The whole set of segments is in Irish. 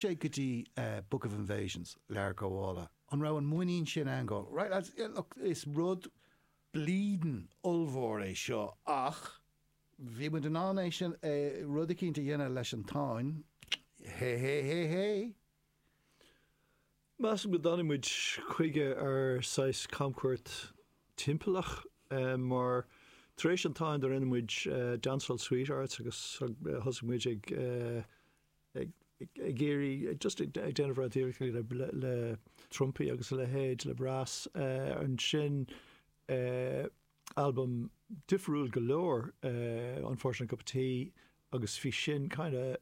sé go dtí Book of Invasions, Lebor Gabála. An raibh an muinín sin ann go, right lads, yeah, look, is rud bleedin' ollmhór é seo ach bhí muid in ann, é, rud eicínt a dhéanamh leis an Táin, hé, hé, hé, hé? Measaim gur tháinig muid chuige ar saghas camchuairt timpeallach mar tar éis an Táin do rinne muid Dancehall Sweethearts agus thosaigh muid ag, ag iarraidh just ag déanamh rud iarracht le trumpaí agus a leithéid le brass ansin albam difriúil go leor Unfortunate Cup of Tea agus bhí sin kind of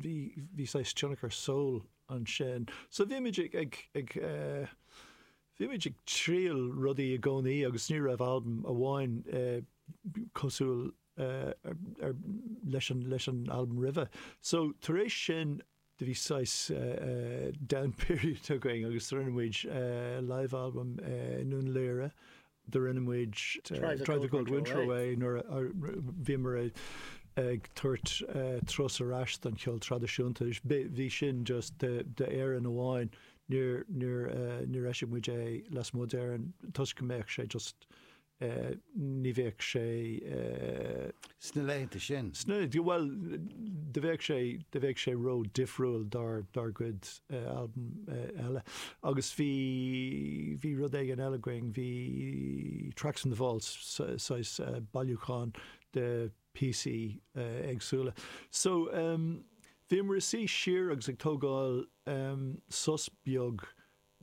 bhí bhí saghas tionchar soul ansin so bhí muid ag ag ag bhí muid ag triail rudaí i gcónaí agus ní raibh albam amháin cosúil leis an albam roimhe. So tar éis sin, do bhí saghas down period againn agus do rinne muid live album i nDún Laoghaire, do rinne muid Drive the Cold Winter Away nuair a bhíomar ag tabhairt turas ar ais don cheol traidisiúnta, bhí sin just d'Éirinn amháin, níor eisigh muid é lasmuigh d'Éirinn toisc go mbeadh sé just, ní bheadh sé. Sna laethanta sin. Sna, bhuel, do bheadh sé, do bheadh sé ró-difriúil dár, dár gcuid albaim eile. Agus bhí, bhí rud éigin eile againn, bhí Tracks from the Vaults, saghas bailiúchán de píosaí éagsúla. So, bhíomar ag suí siar agus ag tógáil sos beag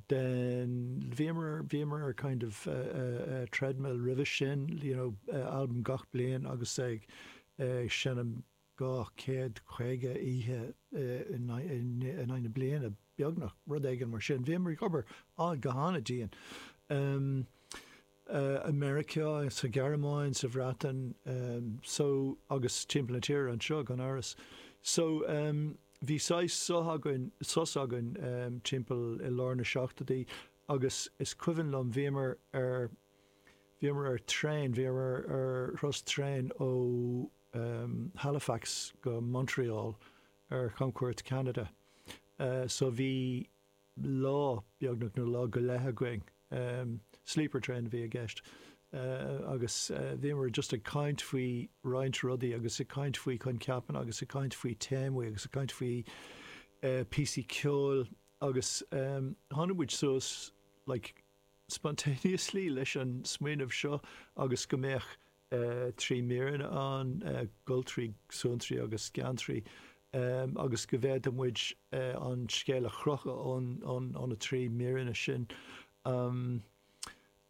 den, bhíomar bhíomar ar kind of treadmill roimhe sin you know albam gach bliain agus ag ag seinm dhá chéad caoga oíche in aghaidh na bliana beagnach rud éigin mar sin bhíomar ag obair á go han-dian i Meiriceá, sa Ghearmáin, sa Bhreatain, so agus timpeall na tíre anseo, gan amhras. So, bhí saghas sos againn, sos againn timpeall i lár na seachtoidí agus is cuimhin liom, bhíomar ar, bhíomar ar traein, bhíomar ar thuras traein ó Halifax go Montreal ar chamchuairt Cheanada. So, bhí, lá, beagnach, nó lá go leith againn. Sleeper train a bhí i gceist. Agus bhíomar just ag caint faoi roinnt rudaí agus ag caint faoi choincheapanna agus ag caint faoi téamaí agus ag caint faoi píosaí ceoil agus tháinig muid suas like spontaneously leis an smaoineamh seo agus go mbeadh trí míreanna ann, goltraí, suantraí agus geantraí, agus go bhféadfadh muid an scéal a chrochadh ó na trí míreanna sin.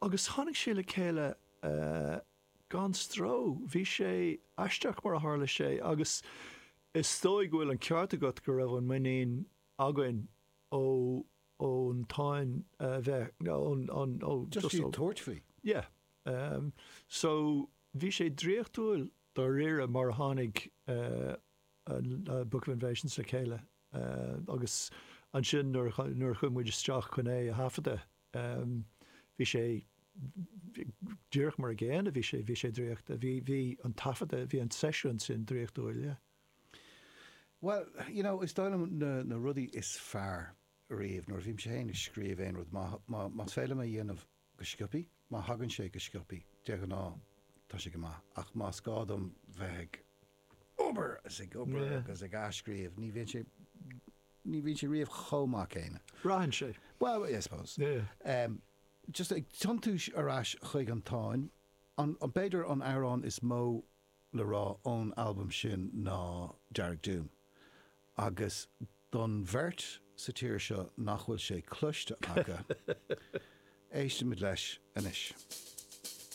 Agus tháinig sé le chéile gan stró. Bhí sé aisteach mar a tharla sé agus is dóigh go bhfuil an ceart agat go raibh an muinín againn ó ón Táin a bheith, ón, ón, ó, Just iad tabhairt faoi. Yeah. Um, so, bhí sé draíochtúil dáiríre mar a tháinig, uh, an, uh, Book of Invasions le chéile, uh, agus ansin nuair a, nuair a chuaigh muid isteach chun é a thaifeadadh, um, bhí sé, díreach mar an gcéanna bhí sé, bhí sé draíocht, bhí, bhí an taifeadadh, bhí an seisiún sin draíochtúil, yeah. Bhuel, you know, is dóigh liom na rudaí is fearr riamh nuair a bhímse féin ag scríobh aon rud, más féidir liom é a dhéanamh go sciopaí, má thagann sé go sciopaí, de ghnáth, tá sé go maith, ach más gá dom bheith ag obair is ag obair agus ag athscríobh, ní bhíonn sé, ní bhíonn sé riamh chomh maith céanna. Braitheann sé. Bhuel, I suppose. Just ag tiontú ar ais chuig an Táin, b'fhéidir an amhrán is mó le rá ón albam sin ná Dearg Doom agus don bheirt sa tír seo nach bhfuil sé cloiste acu, éistfimid leis anois.